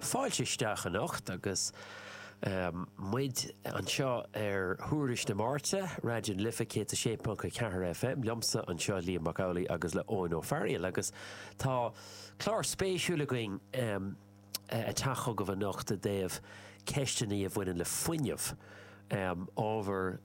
Fáilte isteach anocht agus muid anseo ar Thuairisc na Máirte, Raidió na Life 106.4 FM, liomsa anseo Liam Mac Amhlaigh agus le Eoin Ó Fearghail agus tá clár spéisiúil againn ag teacht chugaibh anocht i dtaobh ceisteanna a bhaineann le fuinneamh, ábhar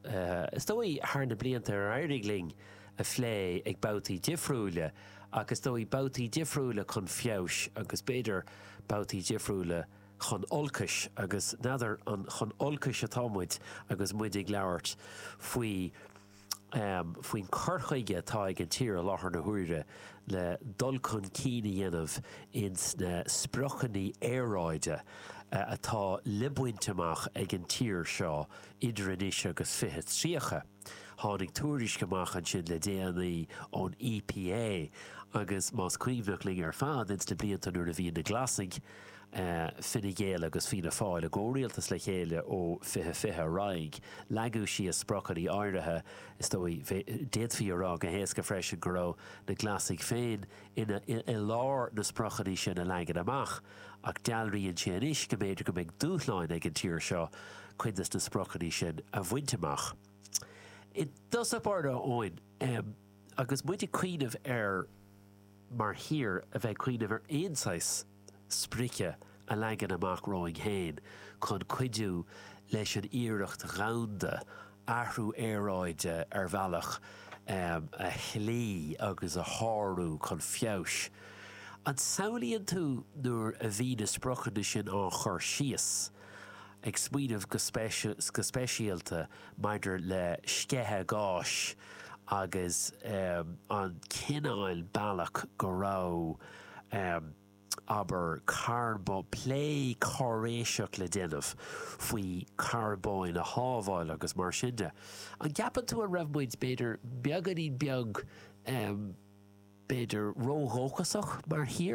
is dóigh thar na blianta ar éirigh linn a phlé ag babhtaí difriúla. Ach is dóigh babhtaí difriúla chun feabhais agus b'fhéidir babhtaí difriúla chun olcais agus n'fheadar an chun olcais atá muid agus muid ag labhairt faoi faoin cur chuige atá ag an tír i láthair na huaire le dul chun cinn a dhéanamh ins na spriocanna aeráide atá le baint amach ag an tír seo idir anois agus 2030. Tháinig tuairisc amach ansin le déanaí ón EPA agus más cuimhneach linn ar fad ins na blianta nuair a bhí na Glasaigh, Fine Gael agus Fianna Fáil i gcomhrialtas le chéile ó 2020 ar aghaidh, leagadh síos spriocanna áirithe. Is dóigh, d'fhéadfaí a rá go héasca freisin go raibh na Glasaigh féin ina, i lár na spriocanna sin a leagan amach. Ach dealraíonn sé anois go mb'fhéidir go mbeidh dúshláin ag an tír seo cuid de na spriocanna sin a bhaint amach. I dtosach báire a Eoin agus muid ag cuimhneamh air mar thír a bheith ag cuimhneamh ar aon saghas sprice a leagan amach romhainn fhéin chun cuidiú leis an iarracht dhomhanda athrú aeráide ar bhealach a shlí agus a shárú chun feabhais. An samhlaíonn tú nuair a bhí na spriocanna sin á chur síos, ag smaoineamh go speisialta maidir le sceitheadh gás agus an cineál bealach go raibh. Abair carbón, plé cáiréiseach le déanamh faoi charbóin a shábháil agus mar sin de. An gceapann tú an raibh muid, b'fhéidir, beagáinín beag, em, b'fhéidir ródhóchasach mar thír?